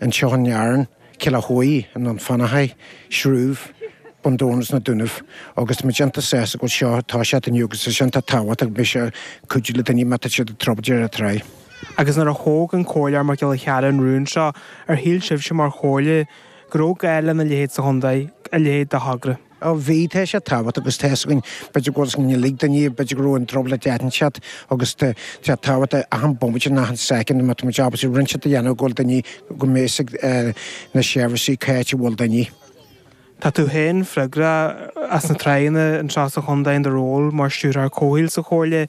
Anseo in Éirinn, Cill Dá Thuaidh, i nDún Fionnachaidh, Srúibh, Bun Dobhráin is sna Dúnaibh, agus tá muid iontach sásta go bhfuil seo, tosaithe inniu agus is é sin atá tábhachtach, beidh sé ag cuidiú le daoine má tá siad i dtrioblóid ar an dtráigh. Agus nuair a thóg an Comhairleoir Mac Giolla Chearra an rún seo, ar shíl sibhse mar Chomhairle go raibh gá lena leithéid sa chontae, a leithéid de thogra? Ó bhí, tá sé tábhachtach agus tá fhios againn, b'fhéidir go bhfuil a fhios ag an uile dhuine, b'fhéidir go raibh an trioblóid le haitheantas agus tá sé tábhachtach achan bomaite, achan soicind, má tá muid ábalta cinnte a dhéanamh, go bhfuil duine, go mbeidh a fhios ag na seirbhísí cá háit a bhfuil duine. Tá tú féin freagrach as na tráigheanna anseo sa chontae in do ról mar Stiúrthóir Comhshaoil sa Chomhairle.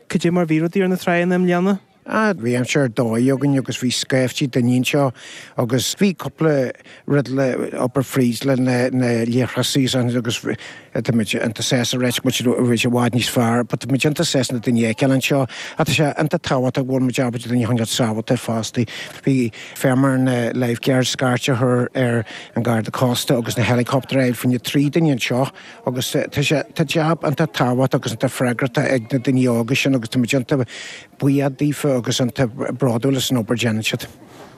Cad é mar a bhí rudaí ar na tráigheanna i mbliana? Bhí aimsir ar dóigh againn agus bhí scaiftí daoine anseo agus bhí cúpla rud le hobair fríd le na na leithreasaí sin agus tá muid iontach sásta anois go bhfuil sé i bhfad níos fearr but tá muid iontach sásta na daoine fheiceáil anseo ach tá sé iontach tábhachtach go bhfuil muid ábalta daoine a choinneáil sábháilte fosta. Bhí féar ar na lifeguards scairt a chur ar an Garda Cósta agus an helicopter a fháil fá choinne trí duine anseo Agus tá jab iontach tábhachtach agus iontach freagrachtach ag na daoine óga sin agus táimid iontach buíoch daofa agus iontach bródúil as an obair a dhéanann siad.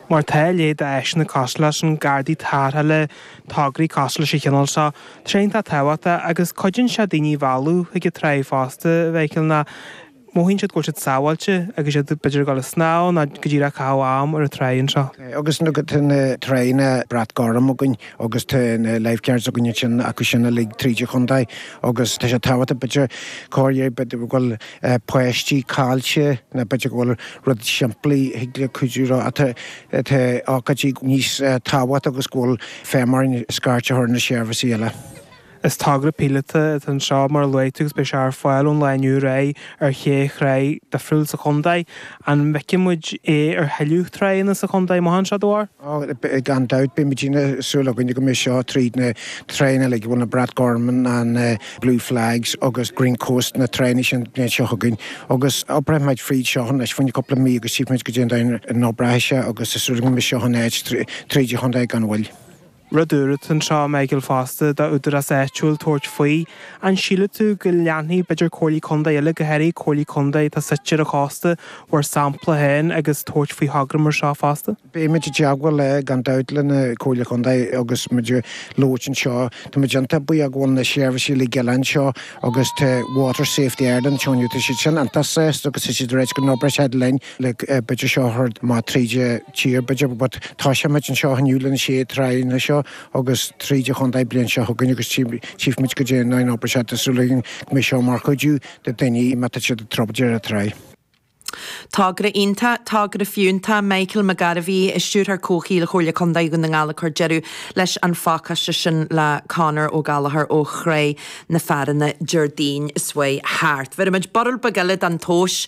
Mar tá a leithéid de áiseanna cosúil leis na Gardaí Tarrthála tograí cosúil leis an chineál seo tréan tábhachtach agus cuidíonn sé daoine a mhealladh chuig an tráigh fosta, a Mhichael, mar. Mothaíonn siad go bhfuil siad sábháilte agus iad, b'fhéidir, ag dul ag snámh nó go díreach ag caitheamh am ar an dtráigh anseo. Agus tá na tráigheanna brat gorm againn agus tá na lifeguards againn ansin acu sin uilig tríd an chontae agus tá sé tábhachtach, b'fhéidir, corruair, b'fhéidir, go bhfuil páistí caillte nó b'fhéidir go bhfuil rud simplí a thig leo cuidiú leo. Tá ócáidí níos tábhachtacha agus go bhfuil féar orthu scairt a chur ar na seirbhísí eile. Is togra píolótach atá anseo, mar a luaigh tú, agus beidh sé ar fáil ón lá inniu ar aghaidh ar shé thráigh difriúil sa chontae. An bhfeicfidh muid é ar thuilleadh tráigheanna sa chontae amach anseo, do bharúil? Ó, gan dabht, beidh muid ag súil againn go mbeidh seo tríd na tránna uilig, bhfuil na Brat Gorm ann, an Blue Flags agus Green Coast, na tránna sin beidh seo againn agus oibreoidh muid fríd seo anois fá choinne cúpla mí agus tchífidh muid cad é an dóigh a n-oibreoidh seo agus tá súil againn go mbeidh seo in áit tríd an chontae gan mhoill. Rud úr atá anseo, a Michael fosta, do údarás áitiúil tabhairt faoi, an síleann tú go leanfaidh b'fhéidir Comhairlí Contae eile, go háirithe Comhairlí Contae atá suite ar an chósta, bhur sampla féin agus tabhairt faoi thograí mar seo fosta? Beimid i dteagmháil le, gan dabht, le na Comhairlí Contae agus mar a luaigh tú anseo. Tá muid iontach buíoch go bhfuil na seirbhísí uilig eile anseo agus tá Water Safety Ireland anseo inniu. Tá siad sin iontach sásta agus tá siad ag rá go n-oibreoidh siad linn. b'fhéidir seo thar má tríd an tír b'fhéidir but tosóidh muid anseo inniu leis na sé tráigheanna seo agus tríd an chontae bliain seo chugainn agus tífidh muid cad é mar a théann an obair seo tá súil againn go mbeidh seo mar chuidiú do dhaoine má tá siad i dtrioblóid ar tráigh. Togra iontach, togra fiúntach, Michael McGarvey, Stiúrthóir Comhshaoil Chomhairle Contae Dhún na nGall ag cur deireadh leis an phacáiste sin le Conor Ó Gallachóir ó Thrá na Fearthainne, Déardaoin seo chuaigh thart. Bheirimid borradh beag eile den tomhas.